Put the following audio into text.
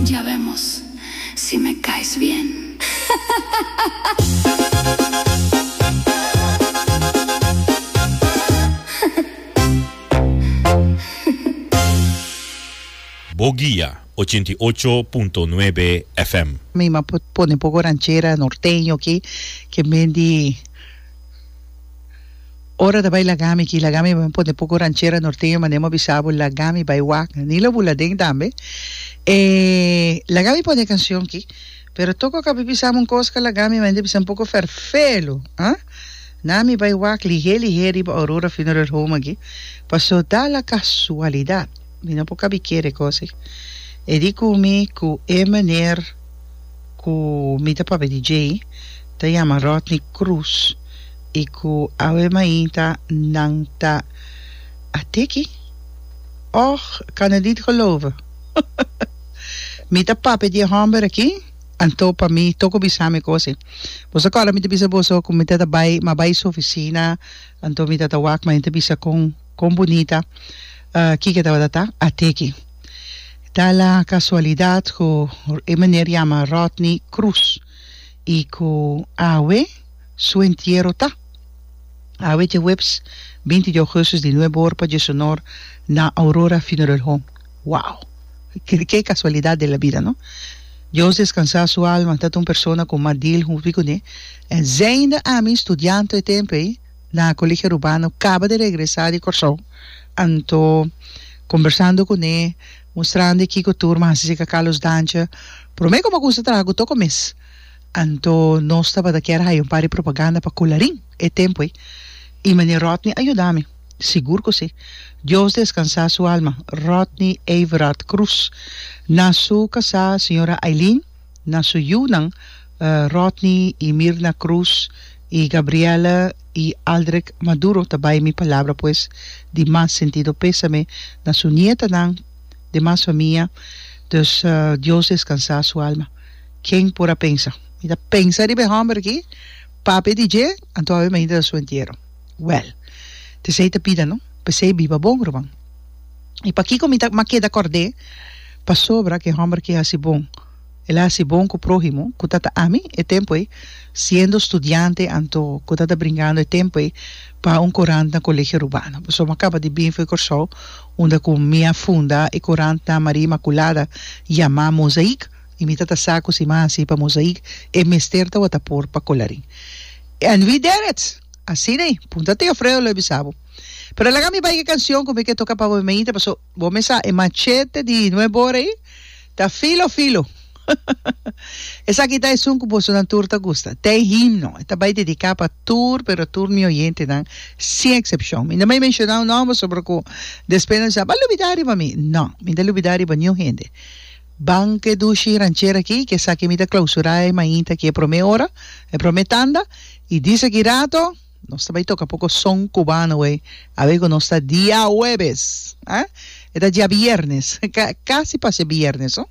Ya vemos si me caes bien. Bo guia ochenta i ocho punto nuebe FM. Mi m'a pone poco ranchera norteño aquí, que mendi. Ora ta bai laga mi aki, laga mi bai un ponte poko ranchera norteño mane mi a bisa bo laga mi bai wak ni lo buladen tambe e laga mi pone e cancion aki pero tok oko a bin bisa mi un cos ka laga mi mane ta bisa un poko ferfelu ah na mi bai wak lihé lihé riba Aurora Funeral Home aki paso da la casualidad mi no por kabi kere e cos aki e di cu mi cu e meneer ku mi ta papia di djei ta yama Rodney Cruz i ku awe mainta nan ta a teki. Och, Canadita Geloven! Mi ta papia di e hòmber aki, anto pa mi toko bisa mi kosi. Boso a kòrda mi ta bisa boso ku mi ta ta bai, m'a bai su ofisina, anto mi ta ta wak, ma e ta bisa kon, kon bunita kiko tabata ta a teki. Ta la casualidad cu e meneer yama Rodney Cruz y cu awe su entiero ta. Awe djeweps binti di augustus di nuebe or pa dje su nor na Aurora Funeral Home. Wow! Ke casualidad de la bida no. Dios descansa su alma, ta ta un persona cu ma deal hunfi cune. Eind'e ami studianto e tempo ey. na Colegio Rubano caba de regresa di Corsou anto combersando cune mustrande kico tur m'a hasi seca Carlos Dance prome como custa traha cu toco mes anto nos tabata kier haya un par di propaganda pa Colarin e tempoe y Meneer Rodney a yuda mi sigur cu si Dios descansa su alma Rodney Everard Cruz na su casa Señora Eileen Na su yunan, Rodney y Mirna Cruz y Gabriela y Aldrek Maduro ta bay mi palabra pues di mas sentido pesame na su nietanan, demas famia, dus Dios descansa su alma. Ken por a pensa. Mi ta pensa riba e homber aki, papia di dje, anto a imagina ta su entiero. Well, t esey ta bida no, p'esey biba bon ruman. I pakiko mi ta makeda kòrd'é? Pasobra ku e hòmber ke hasi bon, el a hasi bon ku próhimo, ku ta ta ami e tempu ei, siendo studiante, anto ku ta ta bringando e tempu ei pa un korant na Kolegio Rubano. Pasobra mi a kaba di bin for Kòrsou, unda ku mi a funda e korant na Maria Imakulada yamá Mozaïk, i mi ta ta sa ku si mi a hasi pa Mozaïk, e mester tabata por pa Kòlarin. And we did it! Asin'ei! Punta Teofreo lo a bisa bo. Pero laga mi bai e cancion cu mi ke toca pa bo meita paso bo me sa e machete di Nue Bora ei ta filo filo. Esaki ta esun cu bosonan tur ta gusta. Ta e himno. E ta bai dedica pa tur pero tur mi oyentenan sin excepcion. Mi no bay menciona un nomber pasobra cu despues nan bisa, Bo a lubida riba mi. No, mi no ta lubida riba niun hende. Ban cu e dushi ranchera aki cu esaki mi ta clausura e mainta aki e prome ora, e prome tanda y di esaki rato, Nos ta bai toca poco son cubano hoy, a ver cu nos ta diahuebes, ah? E ta diabiernes, ca, casi pa ser biernes, oh.